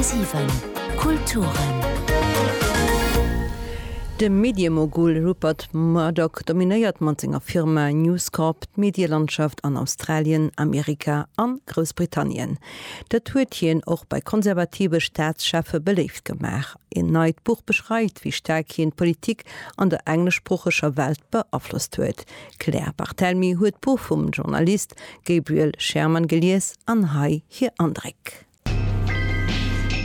10,7 Kulturen. De Medie-Mogul Rupert Murdoch dominéiert mat senger Firma News Corp d'Medielandschaft an Australien, Amerika an Groussbritannien. Dat huet hien och bei konservative Staatscheffe beléift gemaach. En neit Buch beschreift, wéi staark hien d'Politik an der engleschsproocheger Welt beaflosst huet. D'Claire Barthelmy huet d'Buch vum Journalist Gabriel Sherman gelies an hei hir Andréck.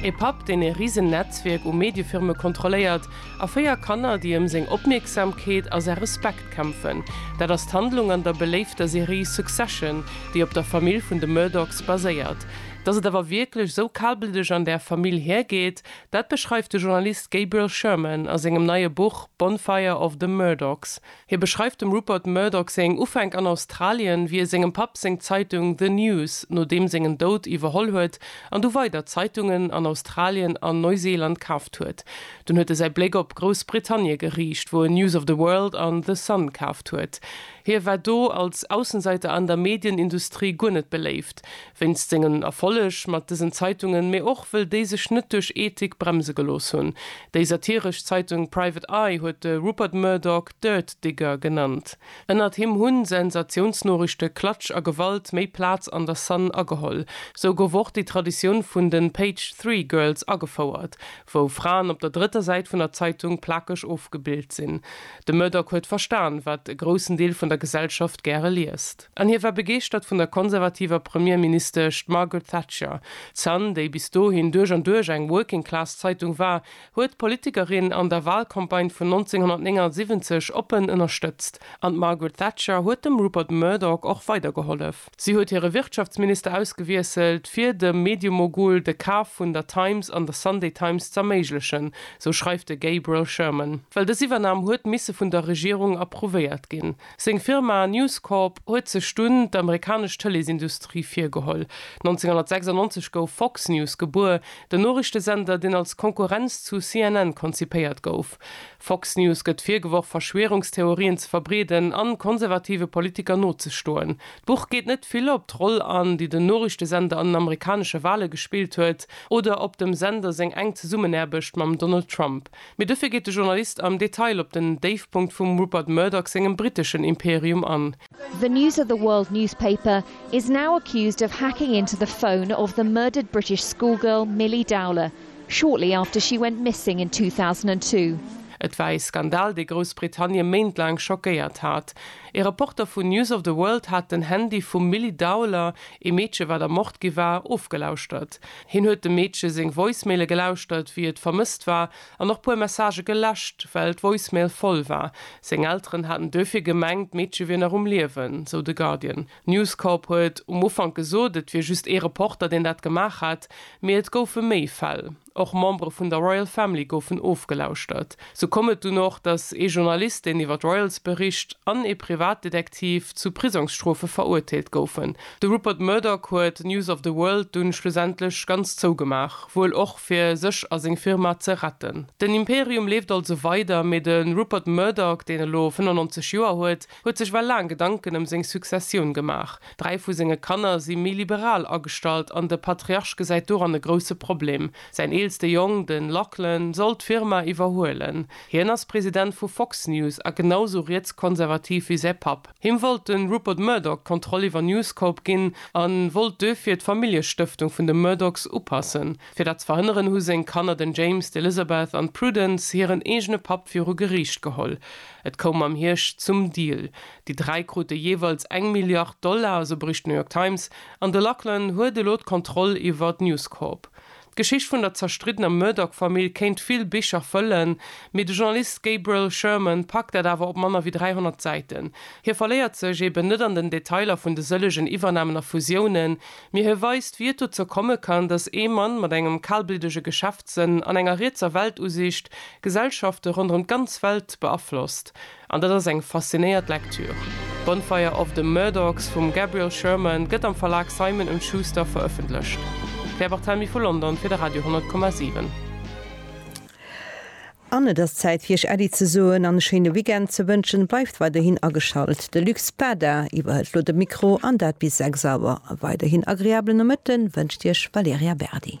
E Papp, deen e risen Netzwierk u Mediefirme kontrolléiert, a véier Kanner, déi ëm seng Opmierksamkeet a säi Respekt kämpfen, dat ass d'Handlung an der beléifter Serie Succession, déi op der Famill vun de Murdochs baséiert. Dass et awer wierklech esou kalbleddeg an där Famill hiergeet, dat beschreift de Journalist Gabriel Sherman a sengem neie Buch Bonfire of the Murdochs. Hie beschreift dem Rupert Murdoch seng Ufänk an Australien, wéi e sengem Papp seng Zeitung The News no deem sengen Doud iwwerholl huet an du weider Zeitungen an Australien an Neuseeland kaaft huet. Dunn huet e säi Bléck op Groussbritannie geriicht, wou en News of the World an The Sun kaaft huet. Hie war do als Aussenseiter an der Medienindustrie guer net beléift, Wéinst sengen Erfolleg mat dësen Zeitungen, mee och wëll déi sech net duerch Ethik bremse gelooss hunn. Déi satiresch Zeitung Private Eye huet de Rupert Murdoch Dirt Digger genannt. Ënnert him hunn Sensatiounsnoriichte, Klatsch a Gewalt méi Plaz an der Sun ageholl. Sou gouf och déi Traditioun vun den Page Three Girls agefouert, wou Fraen op der drëtter Säit vun der Zeitung plakeg ofgebild sinn. De Murdoch huet verstan, wat e groussen Deel vun der Gesellschaft gäre liest. An hie war begeeschtert vun der konservativer Premierministesch Margaret Thatcher. D'Sun, déi bis dohin duerch an duerch eng Working-Class-Zeitung war, huet d'Politikerin an der Walcampagne vun 1979 oppen ënnerstëtzt. An d'Margaret Thatcher huet dem Rupert Murdoch och weider gehollef. Si huet hire Wirtschaftsminister ausgewiesselt, fir dem Mediemogul de Kaf vun der Times an der Sunday Times z'erméiglechen, sou schreift de Gabriel Sherman. Well dës Iwwernam huet misse vun der Regierung approuvéiert ginn. Seng Firma News Corp huet sech dunn d'amerikanesch Tëleesindustrie virgeholl. 1996 gouf Fox News gebuer, den Noriichtesender, deen als Konkurrenz zu CNN konzipéiert gouf. Fox News gëtt virgeworf, Verschwierungstheorien ze verbreeden a konservative Politiker nozestoen. D'Buch geet net vill op d'Roll an, déi den Noriichtesender an den amerikanesche Wale gespillt huet oder op dem Sender seng enk Zesummenaarbecht mam Donald Trump. Mee dofir geet de Journalist am Detail op den Déifpunkt vum Rupert Murdoch sengem briteschen Imperium an. The News of the World newspaper is now accused of hacking into the phone of the murdered British schoolgirl Milly Dowler shortly after she went missing in 2002. Et war ee Skandal, dee Groussbritannie méintlaang schockéiert hat. Ee Reporter vun News of the World hat den Handy vum Milly Dowler, ee Meedche wat ermort gi war, ofgelauschtert. Hien huet dem Meedche seng Voicemaile gelauschtert, wéi et vermësst war, an och puer Messagë geläscht, well d'Voicemail voll war. Seng Elteren haten duerfir gemengt, d'Meedche wier nach um Liewen, sou de Guardian. News Corp huet um Ufank gesot, et wier just ee Reporter, deen dat gemaach hat, mee et goufe méi Fäll. Och Membere vun der Royal Family goufen ofgelauschtert. Sou koum et dunn och, datt ee Journalist, deen iwwer d'Royals bericht, an ee Privatdetektiv zu Prisongsstrofe verurteelt goufen. De Rupert Murdoch huet News of the World dunn schlussendlech ganz zougemaach, wuel och fir sech a seng Firma ze retten. Den Imperium leeft also weider, mee de Rupert Murdoch, deen elo 95 Joer huet, huet sech well laang Gedanken ëm seng Successioun gemaach. Dräi vu senge Kanner si méi liberal agestallt an de Patriarch gesäit doran e grousse Problem. Säin eelste Jong, de Lachlan, soll d'Firma iwwerhuelen. Hien ass President vu Fox News a genau sou rietskonservativ wéi säi Papp. Him wollt de Rupert Murdoch d'Kontroll iwwer News Corp ginn a wollt duerfir d'Familljestëftung vun de Murdochs upassen. Fir dat ze verhënneren, hu seng Kanner, den James, d'Elizabeth an d'Prudence, hiren eegene Papp viru Geriicht geholl. Et koum am Hierscht zum Deal. Déi dräi krute jeeweils eng Milliard Dollar, esou bericht d'New York Times. An de Lachlan huet elo d'Kontroll iwwert News Corp. D'Geschicht vun der zerstriddener Murdoch-Famill kéint vill Bicher fëllen, mee de Journalist Gabriel Sherman packt dat awer op manner wéi 300 Säiten. Hie verléiert sech eeben net an den Detailer vun de sëllegen Iwwernamen a Fusiounen, Mee hie weist, wéi et dozou komme kann, datt ee Mann mat engem kalbliddege Geschäftssënn an enger rietser Weltusiicht Gesellschafte ronderëm d'ganz Welt beaflosst. An dat ass eng faszinéiert Lektür. Bonfire of the Murdochs vum Gabriel Sherman gëtt am Verlag Simon und Schuster verëffentlecht. D'Claire Barthelmy vu London fir de Radio 10,7. An et ass Zäit fir iech Äddi ze soen an e schéine Weekend ze wënschen. Bleift weiderhin ageschalt, de Luc Spada iwwerhëlt lo de Mikro an dat bis 6 Auer. E weiderhin agreablen Nomëtte wënscht iech Valerja Berdi.